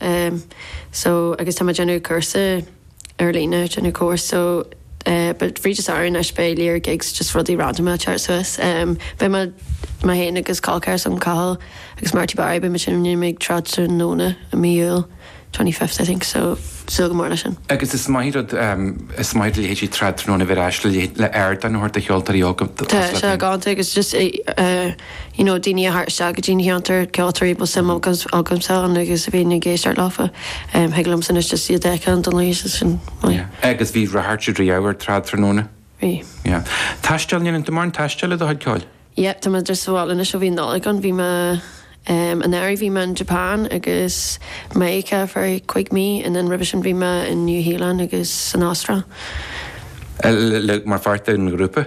em, so agus táim ag déanamh cúrsa ar líne, ag déanamh cúrsa so eh but fríd an samhradh anois beidh léir gigs just rudaí random ag teacht suas. Em, beidh muid, mé féin agus col ceathrar agam, Cathal agus Marty Barry, beidh muid ag seinm ag Trad Tráthnóna i mí Iúil, twenty fifth I think so súil go mór leis sin. Agus is maith rud, em, is maith do leithéidí Trad Tráthnóna bheith ar ais le leith, le aird a thabhairt do cheoltóirí óga, Tá, tá sé galánta agus just eh, eh, you know daoine a thabhairt isteach go dtí an cheantar, ceoltóirí a bhfuil suim agamsa ann agus a bhíonn ag éisteacht leofa. Thig liomsa anois just iad a fheiceáil don luí is sin mar. Yeah. Agus bhí an-ráchairt riamh ar Trad Tráthnóna. Bhí. Yeah. Taisteal, ndéanann tú mórán taistil le do chuid ceoil? Yep, tá mé just sa bhaile anois ó bhí an Nollaig ann. Bhí mé, em, an earraigh bhí mé in Japan agus Meiriceá for cúig mí and then roimhe sin bhí mé in New Zealand agus san Astráil. L, like, mar pháirt den ghrúpa?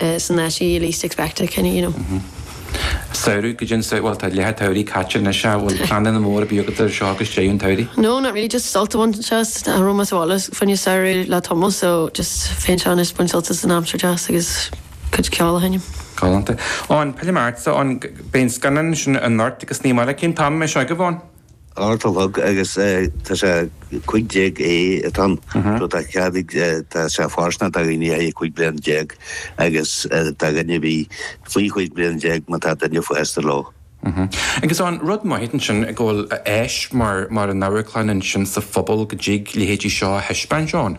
Is an uair you least expect it, kinda, you know. Mh-mh. Samhradh, go dtí an sam, bhuel tá leath an tsamhraidh caite anois, sea, bhfuil pleananna móra ar bith agat anseo go dtí an tsamhraidh? No, not really, just sult a bhaint anois as an am as well as fuinneamh samhraidh le tamall so just féin seo anois baint sult as an aimsir deas agus cuid ceoil a sheinm. Galánta. Ó, an peile martsa, ó, an, beidh an scannán sin i nGort agus ní maith le cinn taim, mbeidh seo agaibh ann? Dhá a chlog agus tá sé 15 A atá ann so tá cead ag tá sé fóirsteanach do dhaoine thar 15 bliain agus do dhaoine a bhí faoi chúig bliana déag má tá duine fásta leo. Agus an rud maith ansin go bhfuil áis mar an amharclann ansin sa phobal go dtig leithéidí seo a thaispeáint ann.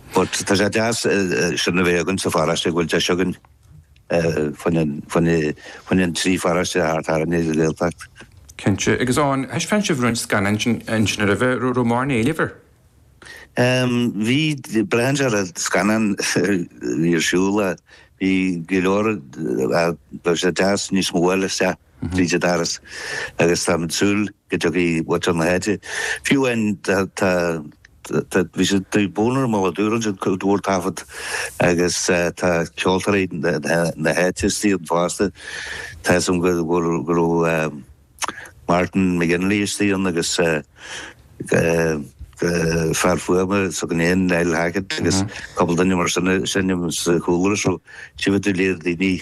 But tá sé deas sin a bheith againn sa pharóiste go bhfuil deis againn faoin an trí pharóiste thart orainn sa Ghaeltacht. Cinnte. Agus ar thaispeáin sibh roinnt scannáin ansin roimhe? Raibh mórán éilimh air? Bhí. Braitheann sé ar an scannán a bhí ar siúl. Bhí go leor. Bheadh sé deas níos mó a fháil isteach. Bríde Harris, Agus táim ag súil go dtiocfaidh bunadh na háite, fiú amháin tá, tá, tá, bhí siad taobh buan orm ó dúradh ansin go bhfuair taifead agus tá ceoltóirí na háite istigh ann fosta, tá 'fhios a'm go bhfuil, go raibh Martin McGinley istigh ann agus fear fuaime againn féin, Niall Hackett agus cúpla duine mar sin, sin a bhí sa chúlra so, tchífidh tú léir daoine.